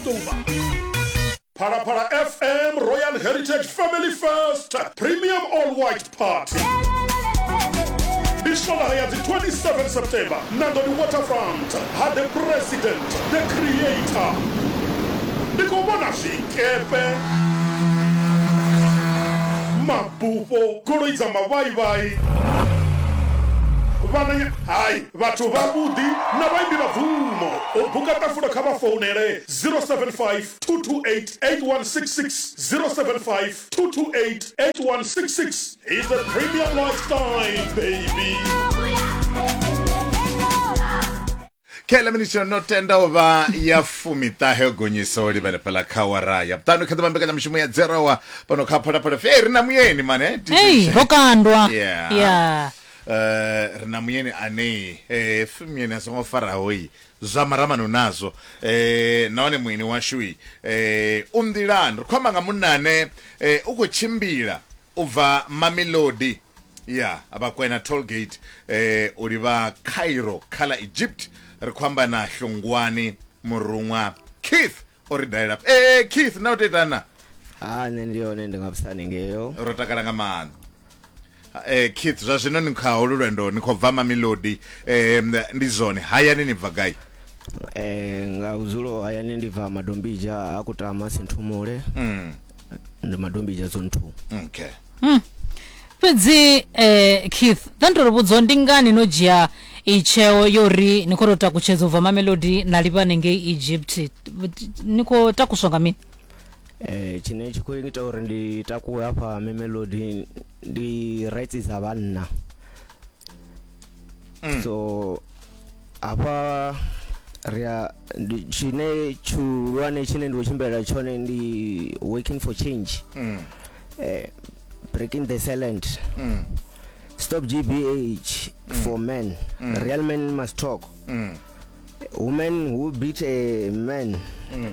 ṱuvha phalaphala fm royal heritage family first premium all white party ndi swolaha ya dzi 27 september na ḓo ndi waterfront ha the president the creator ndi khou vhona zwikepe mabufho goloi dza mavhaivhai vhananya hai Vhathu vhavhuḓi na vhaimbi vha bvumo. U buka ṱafulo kha vha founele 0752288166, 0752288166. He's a premium lifestyle baby. Khaeḽa minitshi yo no tenda u vha ya fumiṱahe yo gonyisa u livhele fhaḽa kha wara ya vhuṱanu kha ḓivha mbekanyamushumo ya dzerowa fhano kha phalaphala fe ri na muyeni mane Hey, ro kandwa. Yeah. Yeah. eh ri na muyeni anei eh pfi muyeni a songo faraho yi zwa maramano nazwo eh nahone muyeni washu yi eh u nḓilani ri khou amba nga munna ane eh u khou tshimbila u bva mamelodi ya vhakwena tollgate eh u livha cairo kha ḽa egypt ri khou amba na hlungwani muruṅwa keith o ri dalela eh keith na u tetana ha nṋe ndi yone ndi nga vhusani ngeyo ro takala nga maanḓa Eh Keith zwa zwino ni kha holu lwendo ni khou bva Mamelodi eh ndi zwone hayani ni bva gai eh nga uzulo hayani ndi bva Madombija a kutama Sinthumule mm ndi Madombija zone 2 okay mm. fhedzi eh Keith thandoro vhudzo ndi ngani no dzhia itsheo yori ni khou tou takutshedza u bva Mamelodi na livha nengei Egypt ni khou takuswa nga mini Eh, tshine tshi khou ita uri ndi takuwe hafha memelodi ndi rights dza vhanna Mm. so hafha ri a ndi- tshine tshihulwane tshine ndi khou tshimbilela tshone ndi working for change Mm. eh, breaking the silent Mm. stop gbh for men Mm. real men must talk Mm. women who beat a man Mm.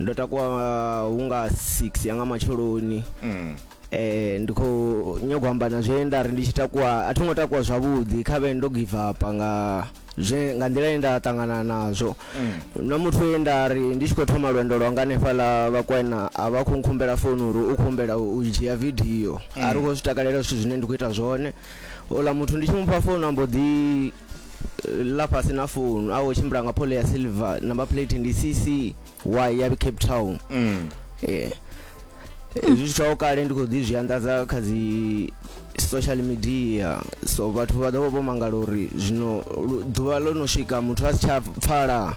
ndo takuwa uh, hu nga 6 ya nga matsheloni mm. eh ndi khou nyagwa amba na zwe nda ri ndi tshi takuwa a thingo takuwa zwavhuḓi kha vhe ndo give up nga zwe nga nḓila ye nda ṱangana nazwo mm. na muthu ye nda ri ndi tshi khou thoma lwendo lwa nga hanefha ḽa vhakwena a vha khou nkhumbela founi uri u khumbela u dzhia vidio mm. a ri khou zwi takalela zwithu zwine ndi khou ita zwone ola muthu ndi tshi mufha founu ambo ḓi ḽa fhasi na founu a wo tshimbila nga phole ya silver number plate ndi ccy ya cape town mm. eh, zwi tshithaho kale ndi khou ḓi zwi anḓadza kha dzi social media so vhathu vha ḓovha vho mangala uri zwino ḓuvha ḽo no swika muthu a si tsha pfala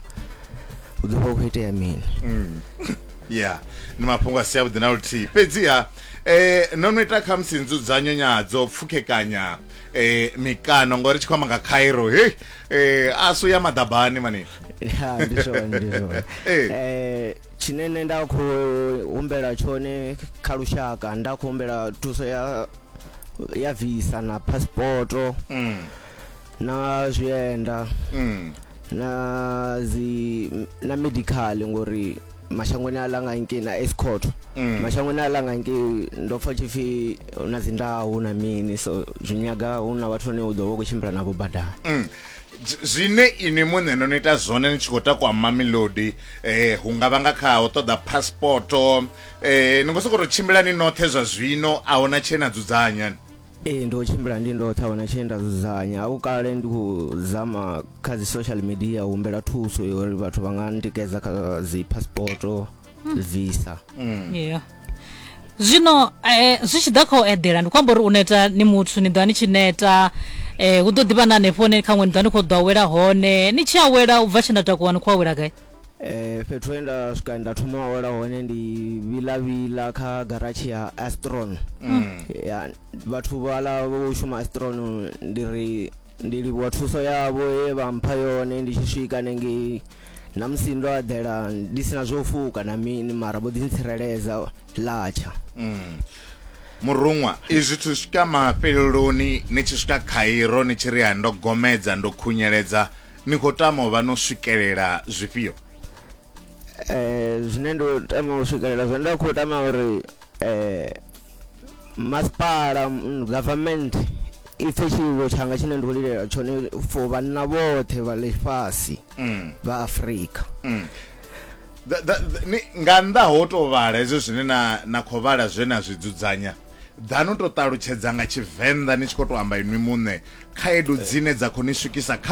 u ḓovha u khou itea mini mm. ya ni mafhungo a si avhuḓi na luthihi fhedziha um no no ita khamusi nzudzanyo nyadzo pfukhekanya eh mikano ngori tshi khoma nga Cairo hey eh asu ya madabani mani ya ndi zwone ndi zwone Eh. eh tshine nṋe nda khou humbela tshone kha lushaka nda khou humbela thuso ya ya visa na passporto mm na zwienda mm na dzi na medical ngori mashangoni a langa ngei na escort mm. mashangoni a langa ngei ndo pfa tshipfi hu na dzi ndahu na mini so zwi nyaga hu na vhathu vhane u ḓo vha u khou tshimbila navho badani mm. zwine ini muṋe no ni ita zwone ni tshi khou takwa mamelodi eh hu nga vha nga kha u ṱoḓa passport eh ni ngo sokou tou tshimbila ni noṱhe zwa zwino a huna tshee na dzudzanya Ee ndo tshimbila ndi ndoṱhe a huna tshee nda dzudzanya a kale ndi khou zama kha dzi social media u humbela thuso ya uri vhathu vha nga ntikedza kha dzi passporto visa yeah. zwino eh, zwi tshi ḓa kha u eḓela ndi khou amba uri u neta ni muthu ni ḓo vha ni tshi neta eh, hu ḓo ḓivha na hanefho hone khaṅwe ni ḓo vha ni khou ḓo awela hone ni tshi awela u bva tshe nda takuwa ni khou awela gai Eh, fhethu he nda swika nda thoma u awela hone ndi vhila vhila kha garatshi ya astron Mm. ya vhathu vhala vho shuma astron ndi ri ndi livhuwa thuso yavho ye vha mpha yone ndi tshi swika nengei na musi ndo aḓela ndi sina zwo fuka na mini mara vho ḓi ntsireledza latsha Mm. muruṅwa izwi thu swika mafheleloni ni tshi swika khairo ni tshi ri ha ndo gomedza ndo khunyeledza ni khou tama u vha no swikelela zwifhio eh zwine ndo tama u swikelela zwe nda khou tama uri eh masipala mm, government i pfhe tshiwo tshanga tshine ndo lilela tshone for vhanna vhoṱhe vha ḽifhasi mm. vha afurika mm. nga nnḓa ho to vhala hezwo zwine na na khou vhala zwe na zwi dzudzanya dza no to ṱalutshedza nga tshivenḓa ni tshi khou to amba inwi muṋe khaedu dzine dza khou ni swikisa kha